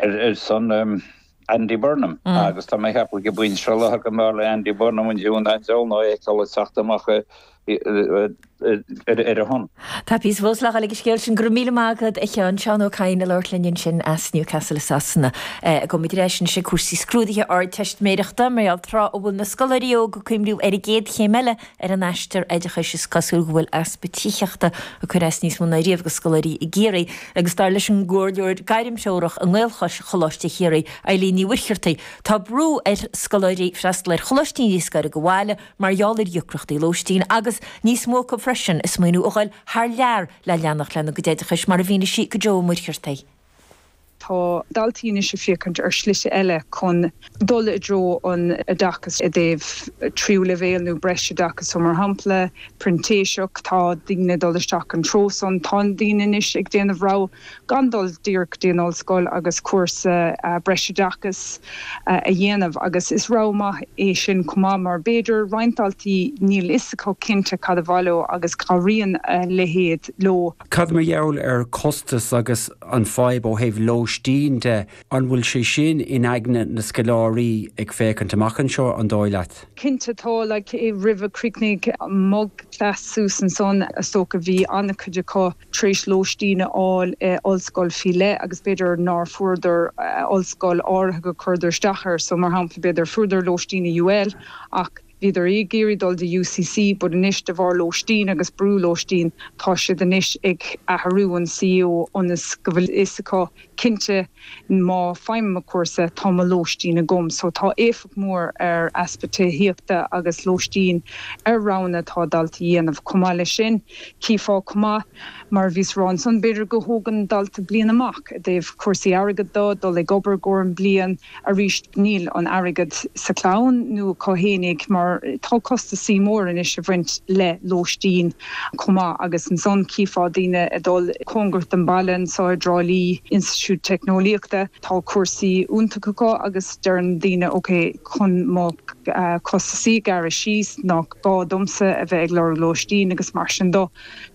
ar son Andy Burnham agus tá mé ag ceapadh go mbeidh sé lá go mb'fhearr le Andy Burnham an deamhan an diabhal ná é a fheiceáil ag teacht amach ar a shon. Tá píosa fós le fáil ag an scéal sin. Go raibh míle maith agat a Sheáin. Seán Ó Cadhain ag labhairt linn ansin as Newcastle i Sasana. Gabhfaidh muid ar ais anois ag cúrsaí scrúdaithe Ardteistiméireachta, mar gheall tráth a bhfuil na scoláirí óga ag cuimhniú ar an gcéad chéim eile. ar an aistear oideachais is cosúil go bhfuil easpa tithíochta ag cur as níos mó ná riamh do scoláirí i gCiarraí agus dar leis an gcomhairleoir gairmthreorach i nGaelchois Choláiste Chiarraí, Eileen Ní Mhuircheartaigh, tá brú ar scoláirí freastal ar choláistí níos gaire do bhaile mar gheall ar dheacrachtaí lóistín agus, níos mó acu freisin, ag smaoiniú a ghoil thar lear le leanacht lena gcuid oideachais mar a mhínigh sí do Joe Ó Muircheartaigh. Tá daltaí anois ag féachaint ar shlite eile chun dul i dtreo an oideachais i dtaobh tríú leibhéal nó breis oideachais. So mar shampla, printíseacht, tá daoine ag dul isteach an treo san. Tá daoine anois ag déanamh rogha gan dul díreach dtí an ollscoil agus cúrsa breis oideachais a dhéanamh agus is rogha maith é sin chomh maith mar b'fhéidir roinnt daltaí níl a fhios acu cinnte cad ba mhaith leo agus cabhraíonn a leithéid leo. Cad mar gheall ar costas agus an fhadhb ó thaobh lóistín de? An bhfuil sé sin in aigne na scoláirí ag féachaint amach anseo, an dóigh leat? Cinnte tá, like roimh a chríochnaigh mo class suas ansan is dócha bhí ana-chuid acu tar éis lóistín a fháil i ollscoil faoi leith agus b'fhéidir nár fuaireadar ollscoil áirithe go cuireadar isteach air so mar shampla b'fhéidir fuaireadar lóistín i UL ach Bhíodar ag iarraidh dul dtí UCC but anois de bharr lóistín agus brú lóistín tá siad anois ag athrú an CAO ionas go bhfuil a fhios acu cinnte má faighim mo cúrsa tá mo lóistín agam so tá éifeacht mór ar easpa tithíochta agus lóistín ar roghanna atá dalta dhéanamh. Chomh maith leis sin chífeá chomh maith mar a bhíos ag rá ansan b'fhéidir go thógann dalta bliain amach i dtaobh cúrsaí airgead de, dul ag obair i gcomhair an bliain, arís níl an airgead sa chlann nó acu féinig mar tá costasaí mór anois ag baint le lóistín chomh maith agus ansan chífeá daoine ag dul cóngarach don baile anseo i dTrá Lí, Institiúid Teicneolaíochta, tá cúrsaí iontach acu agus deireann daoine ok chun mo costasaí a ghearradh síos nách gá domsa a bheith ag lorg lóistín agus mar sin de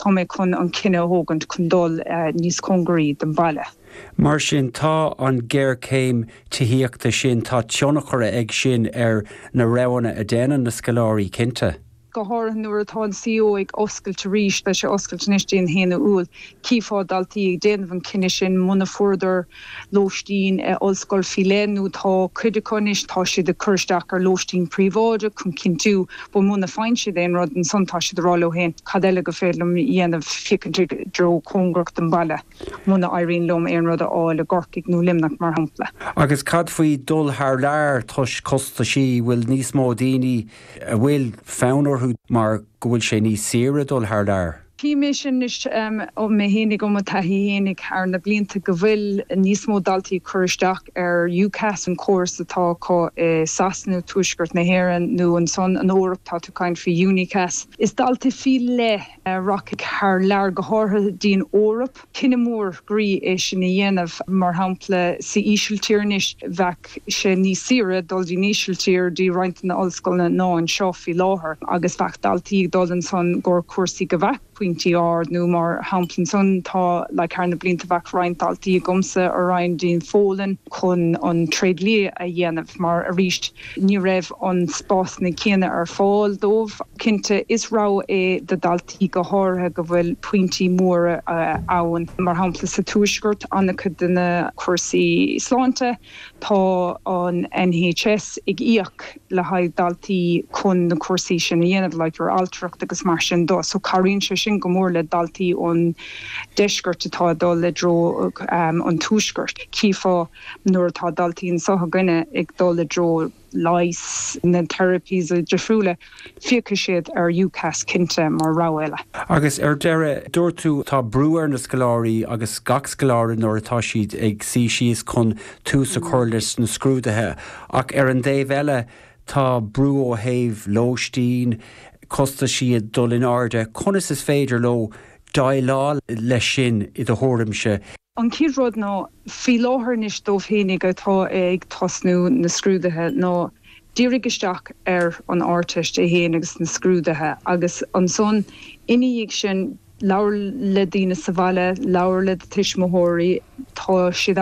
tá mé chun an cinneadh a thógaint chun dul níos cóngaraí don bhaile. Mar sin, tá an géarchéim tithíochta sin, tá tionchar ag sin ar na roghanna a déanann na scoláirí, cinnte. Go háirithe nuair atá an CAO ag oscailt arís, beidh sé oscailte anois dtí an 1 Iúil, tchífeá daltaí ag déanamh an cinneadh sin muna fuaireadar lóistín i ollscoil faoi leith nó tá cuid acu anois, tá siad ag cur isteach ar lóistín príobháideach chun cinntiú, but muna faigheann siad aon rud ansan tá siad ag rá leo féin cad eile go féidir liom dhéanamh, féachaint i dtreo cóngarach don bhaile. Muna éiríonn liom aon rud a fháil i gCorcaigh nó Luimneach mar shampla. Agus cad faoi dul thar lear toisc costaisí? Bhfuil níos mó daoine a bhfuil fonn orthu mar go bhfuil sé níos saoire dul thar lear? Chím é sin anois ó mé fhéinig, ó mo taithí fhéinig thar na blianta go bhfuil níos mó daltaí ag cur isteach ar UCAS, an córas atá acu i Sasana, Tuaisceart na hÉireann nó ansan an Eoraip, tá tú ag caint faoi UniCAS. Is daltaí faoi leith rachaidh thar lear, go háirithe dtí'n Eoraip. Cinneadh mór groí é sin a dhéanamh. Mar shampla, san Ísiltír anois, bheadh sé níos saoire dul dtí'n Ísiltír, dtí roinnt de na ollscoileanna, ná anseo faoi láthair. Agus bheadh daltaí ag dul ansan i gcomhair cúrsaí go bheadh pointí ard, nó mar shampla ansan, tá, like, thar na blianta bheadh roinnt daltaí agamsa a raghadh dtí'n Phólainn chun an tréidlia a dhéanamh mar, arís, Ní raibh na spásanna céanna ar fáil dóibh. Cinnte, is rogha é do dhaltaí go háirithe go bhfuil pointí móra ann. Mar shampla, sa tuaisceart, an-chuid de na cúrsaí sláinte, tá an NHS ag íoc le haghaidh daltaí chun na cúrsaí sin a dhéanamh, like your altracht agus mar sin de. So cabhraíonn sé sin go mór le daltaí ón deisceart atá ag dul i dtreo an tuaiscirt. Chífeá. nuair atá daltaí anseo againne ag dul i dtreo leighis, na therapies difriúla, féachfaidh siad ar UCAS cinnte mar rogha eile. Agus ar deireadh, dúirt tú, tá brú ar na scoláirí agus gach scoláire nuair atá siad ag suí síos chun tús a chur leis na scrúduithe ach ar an dtaobh eile tá brú ó thaobh lóistín, costais iad dul in airde, conas is féidir leo déileáil leis sin i do thuairimse? An chéad rud ná, faoi láthair anois dóibh fhéinig atá ag tosnú na scrúduithe ná dírigh isteach ar an Ardteist é fhéin agus na scrúduithe agus ansan ina dhiaidh sin labhair le daoine sa bhaile, labhair le do tuismitheoirí, tá siad ann